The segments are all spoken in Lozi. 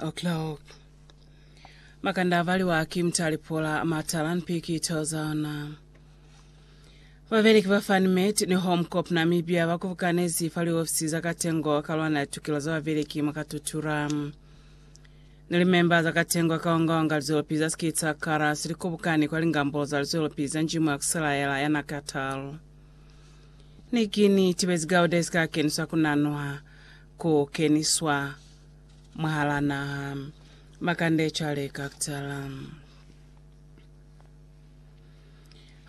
O'clock. Makanda avaliwa ki mutali pola matala ni pikito zaona. Babeleki ba Fanmet ni Home Corp Namibia bakubukanezi fa liofisi za Katengo ka lwana litukelo za babeleki mwa Katutura. Ni limemba za Katengo kaongaonga lizolopi za Skitsa Karas likubukani kwa lingambolo za lizolopi za njimu ya kuselaela ya Nakatal. Ni kini tibezi Gaudes ka keniswa kunanwa ku keniswa. mwahal'a naha. Makande cwale ka kutala.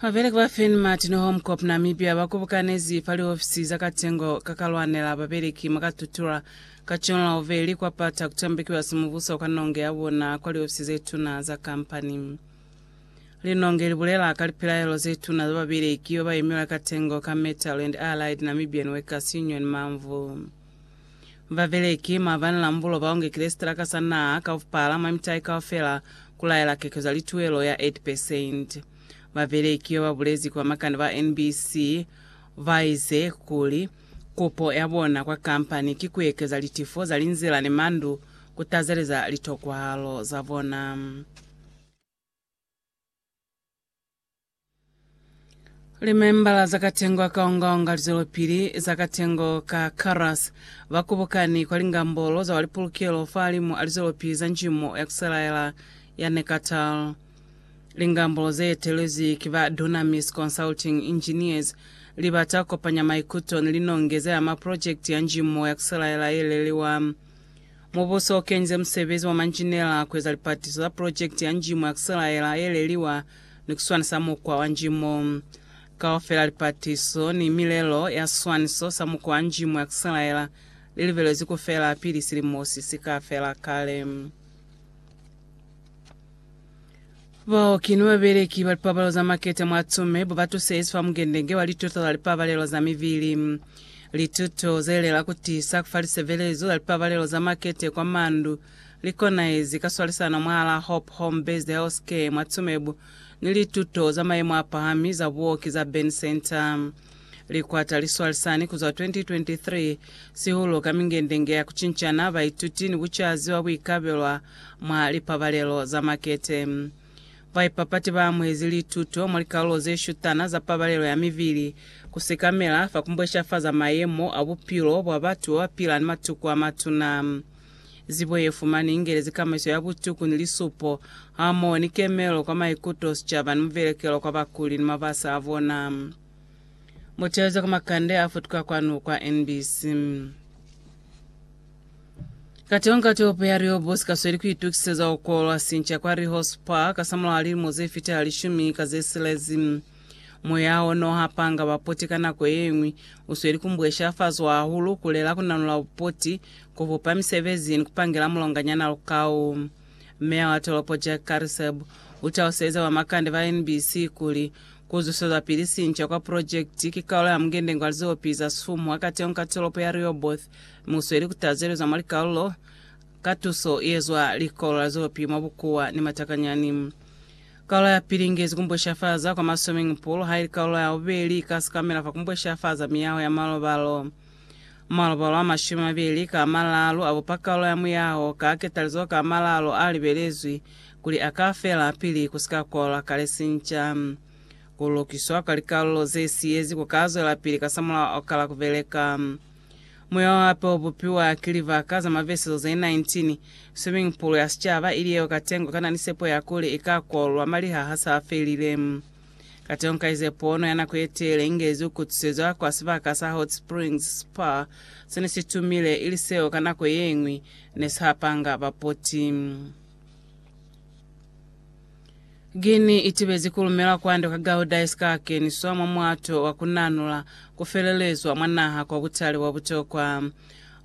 Babeleki ba Finn Martin Home Corp Namibia ba kubukanezi fa liofisi za katengo ka kalwanela babeleki mwa Katutura ka John Lauveli kwa pata kutombekiwa simubuso kwa nonge ya bona kwa liofisi ze tuna za kampani. Linonge li bulela ka lipilaelo ze tuna za babeleki ba ba imilwe katengo ka Metal and Allied Namibian Workers Union, MAMWU. Babeleki, maabani lambulo baonge kilesitela ka sa naha kaufpala mwa mitai kaufela kulaela keko za lituelo ya 8 percent. Babeleki yo babulezi kwa makande ba NBC, baize kuli, Kupo ya bona kwa kampani ki kuekeza litifo za linzila ni mandu kutazeleza litokwahalo za bona. Limembala za katengo akaongaonga lizwelopili za katengo ka Karas bakubukani kwa lingambolo za walipulukelo fahalimu a lizwelopili za njimo ya kuselaela ya Nekatal. Lingambolo zeetelezwi ki ba Dunamis Consulting Engineers libata kukopanya maikuto ni linonge ze ama projekiti ya njimo ya kuselaela yeleliwa. Mubuso ukenze musebezi wa manjinela kueza lipatiso za pulojekiti ya njimo ya Kusilaela yeleliwa ni kuswanisa mukwa wa njimo. Kaufela lipatiso ni milelo ya siswaniso sa mukwa wa njimo ya Kusilaela lilibelezwi kufela pili silimo sisika fela kale. Bao ki ni babeleki ba lipabalelo za maketa mwa tume bo ba tusezi fa mungendenge wa lituto za lipabalelo za mibili. Lituto ze lela ku tiisa ku fa lisebelezo za lipabalelo za makete kwa mandu li konahezi ka swalisano mwahal'a Hope Home Based Healthcare mwa tume bo ni lituto za mayemo a pahami za buoki za Burn Centre. Likwata liswalisani kuzwa 2023 sihulu ka mingendenge ya kucincana baituti ni bucazi bwa buikabelwa mwa lipabalelo za makete. Baipapati ba amuhezi lituto mwa likalulo ze shutana za pabalelo ya mibili, ku sekamela fa ku mbweshafaza mayemo a bupilo bwa batu babapila ni matuku a matuna. Zibo ye fumani ingele zikamaiso ya butuku ni lisupo, hamoho ni kemelo kwa maikuto, sicaba, ni muvelekelo kwa bakuli ni mabasa a bona. Mu taluze kwa makande a futuka kwanu kwa NBC. Kateho nga topo ya Rehoboth kasweli kuitukiseza ukolwa sinca kwa Rehoboth Park kasamulaho lilimo zefita lishumi ka zesilezi. Moya o no hapanga bapoti ka nako ye ñwi u sweli ku mbweshafazwa hahulu, ku lela, ku nanula bupoti, ku bupa misebezi, ni ku pangela mulonganyana lukau. Meya wa tolopo Jack Carisseb u taluseze bomakande ba NBC kuli, Ku zwesezwapili sinca kwa pulojekiti ki kaulo ya mungendenge wa lizopi za sumu ha kateñi ka tolopo ya Rehoboth, mi u sweli ku tazelezwa mwa likaulo ka tuso ye zwa Likolo la Lizopi mwa bukuwa ni matakanyani. Kaula ya pili ingezi kumbweshafaza kwa ma swimming pool, haili kaula ya bubeli ika sikamela fa kumbweshafaza miyaho ya malobalo. Malobalo a mashumi mabeli ka amalaalu a bupa kaula ya muyaho ka ketalizo ka amalaalu a libelezwi kuli a ka fela pili ku si ka kwalwa kale sinca. Ku lukiswa kwa likalulo ze siyezi ku ka zwelapili kasamulaho kala ku beleka. Muya wa hape o bupiwa ki libaka za mabesezo ze 19. Swimming pool ya sicaba ili yeo katengo kana ni sepo ya kuli i ka kolwa malihaha sa felile. Katengo ka ize pono ya nako ye teele i ngezi u kutusezwa kwa sibaka sa Hot Springs Spa se ne si tumile, ili seo ka nako ye ñwi ne si hapanga bapoti. Guinea itibezi kulumela kwande kwa Gauda isikakeniswa mwa mwato wa kunanula kufelelezwa mwa naha kwa butali bwa butokwa.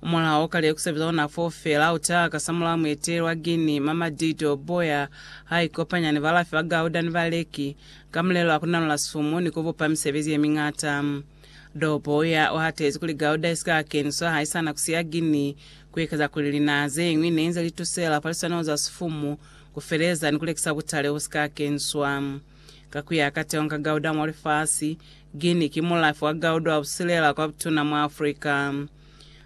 Mulao ka lyo kusebeza ona foo feela utaha kasamulaho mueteli wa Guinea Mamadi Doumbouya ha ikopanya ni balafi ba Gauda ni baleki ka mulelo wa kunanula sifumu ni kubupa misebezi yemiñata. Doumbouya uhatezi kuli Gauda isikakeniswa haisana kusiya Guinea kuikeza kuli linaha zeñwi neinze litusela paliswaniho za sifumu ku feleza ni ku lekisa butale bu si ka keniswa. Ka ku ya ka Teong Gauda mwa lifasi, Guinea ki mulafi wa gauda wa busilela kwa butuna mwa Africa.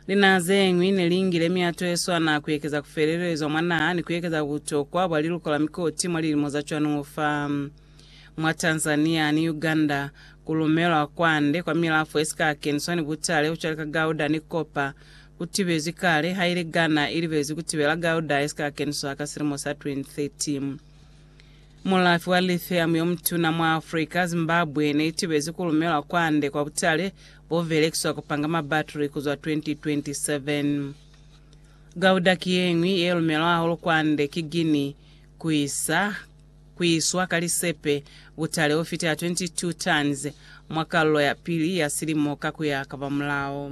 Linaha ze ñwi ne li ngile mihato ye swana ku ekeza ku felelezwa mwa naha ni ku ekeza butokwa bwa liluko la mikoti mwa lilimo za cwanuo fa. Mwa Tanzania ni Uganda, ku lumelwa kwande kwa milafo ye si ka keniswa ni butale ku cwale ka gauda ni copper U tibezi kale haili Ghana i libezi ku tibela Gauda ye si ka keniswa ka silimo sa 2013. Mulafi wa lithium yo mutuna mwa Africa, Zimbabwe ne i tibezi ku lumelwa kwande kwa butale bo belekiswa ku panga mabatri ku zwa 2027. Gauda ki ye ñwi ye lumelwa hahulu kwande ki Guinea ku isa ku iswa ka lisepe butale ho fita 22 tons mwa kalulo ya pili ya silimo ka ku ya ka ba mulao.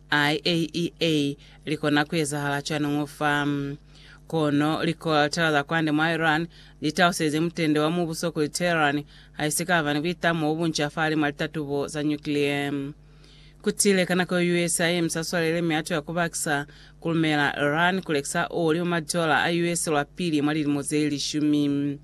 IAEA likona kuezahala cwañi fa? Kono likoltela za kwande mwa Iran litalusezi mutende wa mubuso kuli Tehran haisikaba ni buitamo bobunca fa halimwa litatubo za nyukliye. Kutile ka nako yo US yayemisa swalele mi atuya kubakisa kulumela Iran kulekisa oli mwa madola a US lwapili mwa lilimo zelishumi.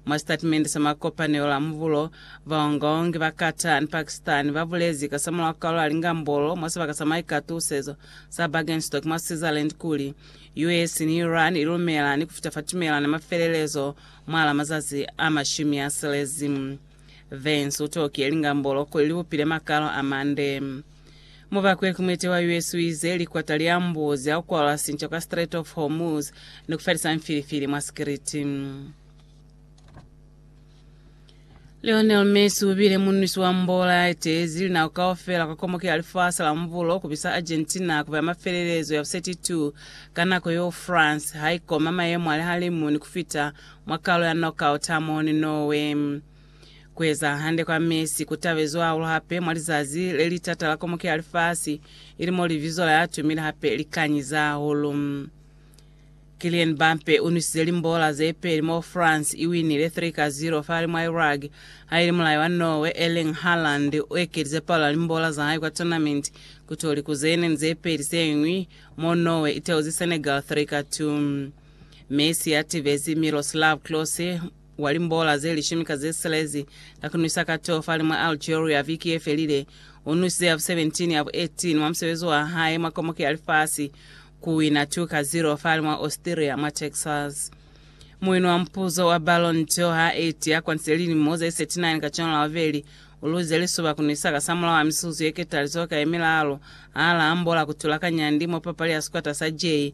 Mwa sitatimende sa makopanelo la mubulo, baongaongi ba Qatar ni Pakistan ba bulezi kasamulaho ka lwa lingambolo mwa sibaka sa maikatusezo sa Bergenstock mwa Switzerland kuli, US ni Iran ilumela ni kufita fa tumelano ya mafelelezo mwalaa mazazi a mashumi asilezi. Vance utokile lingambolo kuli libupile makalo amande. Mubakwe kumwete wa US uize likwata liambuzi akukwalwa sinco ka Strait of Hormuz ni kufelisa mfilifili mwa sikiliti. Lionel Messi ubile munwisi wa mbola yaiteezi linako kaufela kwa komoke ya lifasi la mubulo kubisa Argentina kuba ya mafelelezo ya bu 32 ka nako yeo France haikoma mayemo a lihalimu ni kufita mwa kalo ya knockout hamoho ni Norway. Kueza hande kwa mesi ku tabezwe hahulu hape mwa lizazi le li tata la komuke ya lifasi, ili mo libizo la ya tumile hape li kanyiza hahulu. Kylian Mbappe u nwisize limbola ze peli moo France i winile 3 ka 0 fahali mwa Iraq, ha ili mulai wa Norway Erling Haaland u ekelize palo ya limbola za hae kwa tournament ku to liku ze neni ze peli se ñwi, moo Norway i teuzi Senegal 3 ka 2. Messi a tibezi Miroslav Klose, wa limbola ze lishumi ka ze silezi, ka ku nwisa katofali mwa Algeria viki ye felile. U nwisize ya vu 17, ya vu 18 mwa musebezi wa hae mwa Komoki ya Lifasi, ku wina 2 ka 0 fale mwa Austria, mwa Texas. Muwini wa mupuzo wa Ballon d'Or ha eti ya kwantile lilimo ze 39 ka cwalo la bubeli, u luzize lisuba ku nwisa kasamulaho a mizuzu ye ketalizoho ka ye milalo ha la ambola ku tula ka nyandi mwa papali ya sikwata sa J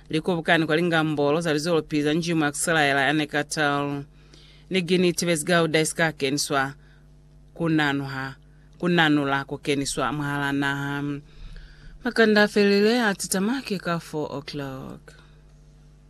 Li kubukani kwa lingambolo za lizolopili za njimu ya Kuselaela ya Neckartal. Ni gini tibezi gauda isika keniswa ku nanuha, ku nanula ku keniswa mwahala naha. Makanda a felelile a titama ki ka 4 o'clock.